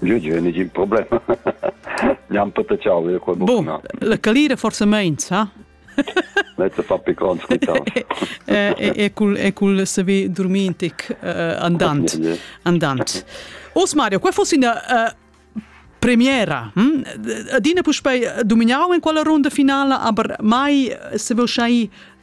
Jeu jeu negin problem. Gnam patachau io quel bun. No? La calira forsa meins, ha? Mezza fa picons quitau. E cul e cul saver dormintic andant. Andant. Os Mario, qual fosse una premiera? Hm? Adina puspei dominau in quella ronda finala, aber mai se veu schai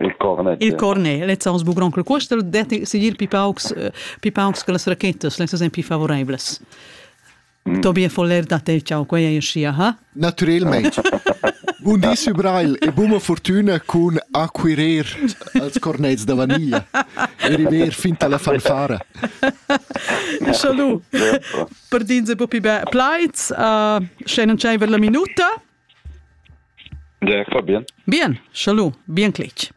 Il cornet. Il cornet, lezzans bugron cul cuostel detti sigir pi paucs pi paucs che las rachetas, lezzas ein pi favoreivlas. Mm. Tobias Foller da te, ciao, quei ei scia, ha? Naturalmente. Bun di, Sü Brail, e buma fortuna cun acquirer als cornets da vaniglia e river fin alla fanfara. Salut! Per din se po pi be plaids, uh, sche non c'è per la minuta. Ja, va bien. Bien, salud, bien cletg.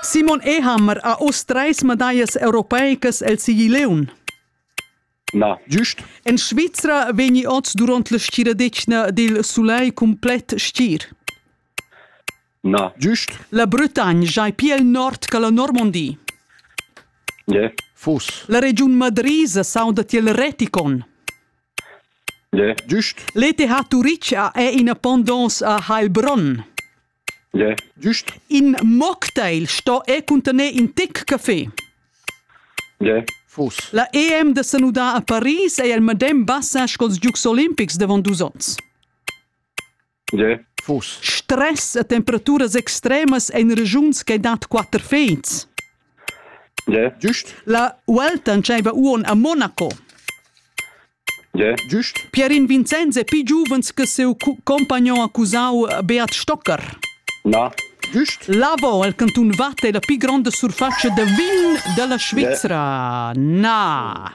Simon Ehammer ha uss treis medallas europeicas el Sigileun. Na, giust. En Svizra vegni oz durant la stiradetgna dil sulei cumplet stir. Na, giust. La Bretagne jai pia il nord che la Normandie. Yeah. Fus. La regiun Madrisa sauda tiel reticon. Gie. Giust. L'ETH Turitg è ina pondonza a Heilbronn. Gie. Giust. In mocktail sto è cuntener in tic café. Gie. Fus. La EM de Sanudà a Paris è il medem bassa sco ils Giugs olimpics davant dus onns. Tge? Stress e temperaturas extremas en regiuns che dat quatter feds. Tge? Giust. La Welton dscheva uon a Monaco. Tge? Giust. Pierin Vincenz è più giovens che seu compagnon accusau Beat Stocker. Na. Giust. Lavo, il canton Watt, è la più grande surfaccia de vin della Svizzera. Na.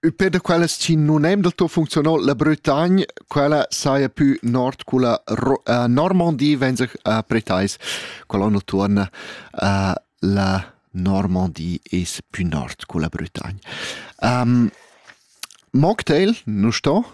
Ün pè da quellas chi nun hem del tuot funcziunà, la Bretagne, quella saja pü nord culla Ro äh, Normandie vegn sich a pretais. Quella on utuon uh, la Normandie es pü nord culla Bretagne. Um, Mocktail, nu sto?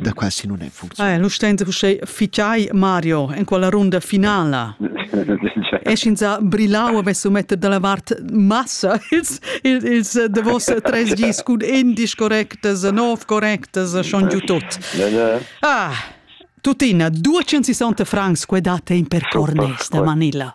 da qua si non è funzionato. Eh, lu stand uschè ficai Mario in quella runda finala. e schinza brillau avessu metter dalla vart massa ils ils, ils davos tres gis cun indisch correctas, nov correctas, schon giu tot. Ah, tuttina 260 francs que date in per cornes da Manila.